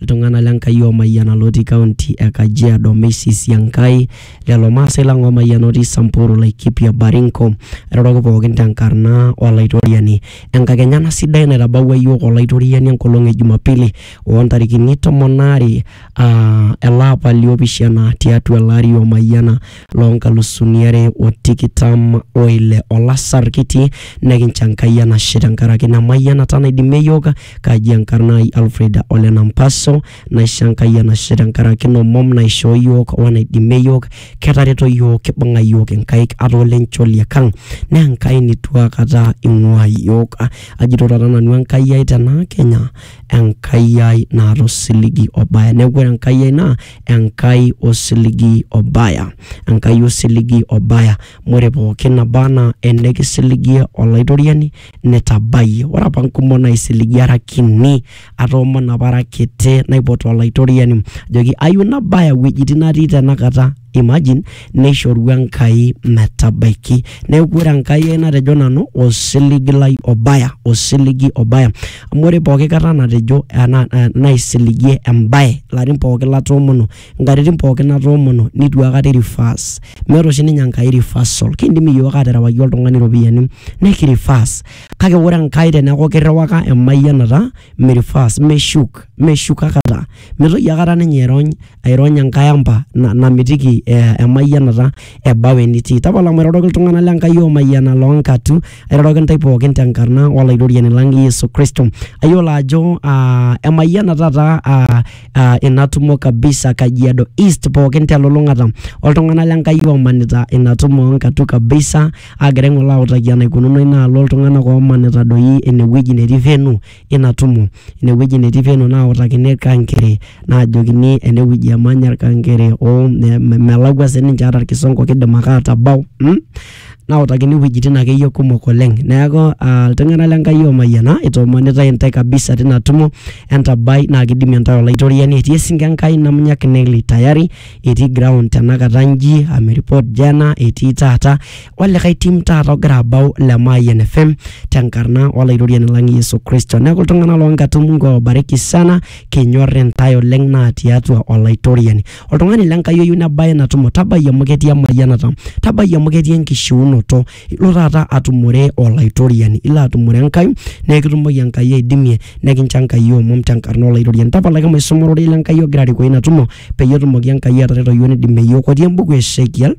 Iltung'ana le Nkai oomayiana lootii kaunti e Kajiado, Messi Siankai, lelo maasai lang oomayiana otii Samburu, Laikipia, Baringo, airoroki pookin te nkarna o Laitoriani. Enkakenya ena sidai naitabawua iyiook Olaitoriani enkolong e Jumapili oo ntarikini tomon aare ele apa li opishana tiatua ele ari omayiana loo nkalusuni are o tikitam o ile. Olasar kitii, nekincho Enkai enashe tenkaraki ina mayianata naidimie iyiook Kaji enkarna ai Alfred ole Nampaso, naisho Enkai enashe tenkaraki ina omom naishoo iyiook wenaidimie iyiook. Ketareto iyiook, kibung'a iyiook inkaik ata ole ncholiek ang. Naa Enkai neitu akata eing'uaa iyiook. Ajito taata nanu Enkai ai tena Kenya, Enkai ai naata osiligi obaya. Neeku ore Enkai ai naa Enkai osiligi obaya. Enkai osiligi obaya. Amu ore pooki naba enaa enikisiligie Olaitoriani netabayie. Ore apa nkumok naaisiligie ara kini, atoomon apa ara kiti naipot Olaitoriani ajoki ayieu nabaya iwuejitin natii tenakata. Imagine neishoru Enkai metabaiki. Neeku ore Enkai ai natejo nanu osiligi lai obaya, osiligi obaya. Amu ore pooki kata natejo, naisiligie embae ilarin pooki latoomono nkatitin pookin natoomono nitu akata i reverse meeta oshi ninye enkai reversal kindim iyiook aterewaki oltung'ani iropiyiani neki reverse kake ore enkai teneeku kirriwaka emayianata mi reverse meshuk meshuk akata mitoki akata ninye airony airony enkae ampa na namitiki eh emayianata ebau enitii tapala mairoroki iltung'anak le Enkai omayiana loonkatu airoroki intae pookin tenkarna olaitoriani lang Yesu kristo ayiolo ajo uh emayiana taata uh ah, ina tumo kabisa Kajiado East pookin telulung'ata oltung'anak l'Enkai oomanita ina tumo oo Nkatu kabisa aagira aing'oru autaki enaikununo ina alo oltung'anak oomanita doi inewueji netii venue ina tumo. Inewueji netii venue nautakini irkang'iri naajokini enewueji emanya irkang'iri oo me- melakua sininche ata irkisongo kiidim ake atabau mm nautakini iwuejitin akeyie kumok oleng neeku uh, iltung'anak le Nkai oomayiana itoomonitae intae kabisa tina tumo entabai naa kidimie intae olaitoriani etii esinke Enkai namunyak Nelly tayari etii ground tenakata nji ameripot jana etii taata olikae tim taata ogira abau le Mayian FM tenkarna olaitoriani lang Yesu Kristo neeku iltung'anak loonkatumuko oobariki sana kinyorr intae oleng naa tiatua olaitoriani oltung'ani le Nkai oyieu nebae ina tumo tabai amu ketii emayianata, tabai amu ketii enkishiunoto, ilo taata atumore Olaitoriani, ilo atumore Enkai naa kitumoki Enkai aidimie nekincho Enkai omom tenkarna Olaitoriani. Tapalaki maisoma ororei le Nkai ogira arikoo ina tumo peyie etumoki Enkai atareto iyiook nidimie iyiook otii embuku e Esekiel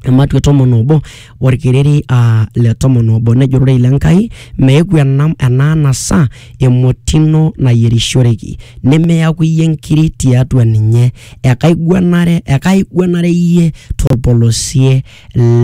ematua e tomon obo orkereri aa le tomon obo nejo ororei le Nkai meeku ena ena anasa emoti ino nayierishoreki nimiyaku iyie nkiri tiatua ninye ekaiguanare ekaiguanare iyie torpolosie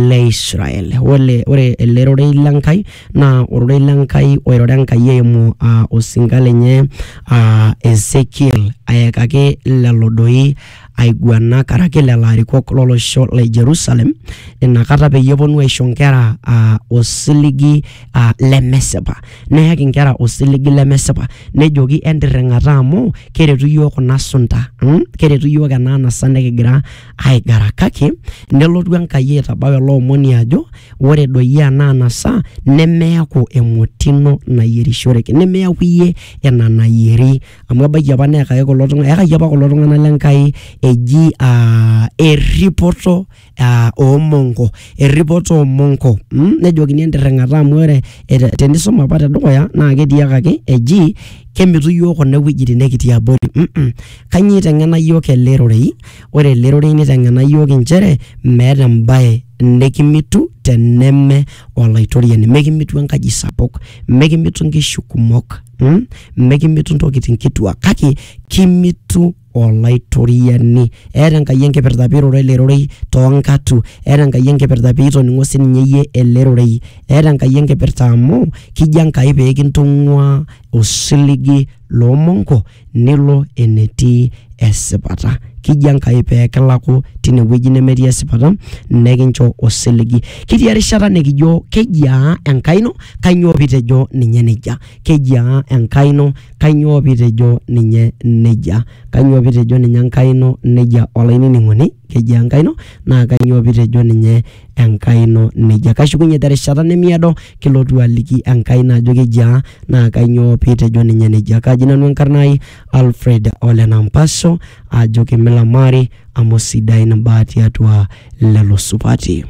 le Israel. Ole ore ele rorei le Nkai naa ororei le Nkai oiroro Enkai eimu aa osinka lenye aa Ezekiel ayakaki lelo doi aiguana karaki lelo arikok lolosho le Jerusalem inakata peyie eponu aisho nkera aa osiligi aa lemesipa, neyaki nkera osiligi lemesipa nejoki entirring'ata amu keretu iyiook kuna sunta mm keretu iyiook ena anasa nekigira aigara kake nelotu Enkai aitabau ele omoni ajo ore doi ena anasa nemeaku emoti ino nayierishoreki, nemeaku iyie ina nayieri. amu ebaiki apa neyakaki kulo tung'anak eyakaki apa kulo tung'anak le Nkai eji aa erripoto aa oo monko, erripoto oo monko mm nejokini entirring'ata amu ore ete tenisum apa te dukuya naake etiakaki eji kemitu iyiok kuna iwuejitin nekitii abori mm mm. Kanyoo iteng'ena iyiok ele rorei? Ore ele rorei niteng'ena iyiok inchere meeta embaye nekimitu teneme Olaitoriani, mekimitu enkaji sapuk, mekimitu inkishu kumok. mm? mekimitu ntokitin kituak kake kimitu olaitoriani eeta enkai enkipirta piiroro ele rorei toonkatu eeta enkai enkipirta piitoning'o sininye iyie ele rorei eeta enkai enkipirta amu kijo enkai peekintung'ua osiligi loomonko nilo enetii esipata. Kiji Enkai pee kilaku tine wueji nemetii esipata nekincho osiligi. Ketii erishata nikijo kejiaa Enkai ino kainyoo pitejo ninye nejia. Kejiaa Enkai ino kainyoo pitejo ninye nejia. Kainyoo pitejo ninye Enkai ino nejia olainining'oni, kejiaa Enkai ino naa kainyoo pitejo ninye. Enkai ino neijia. Kashukunye te rishata nemiado kilotu aliki Enkai ino ajo kejia naa kainyoo pee itejo ninye nejia. Kaji nanu enkarna ai Alfred ole Nampasho ajo kimilamari amu sidain imbaa tiatua lelo supati.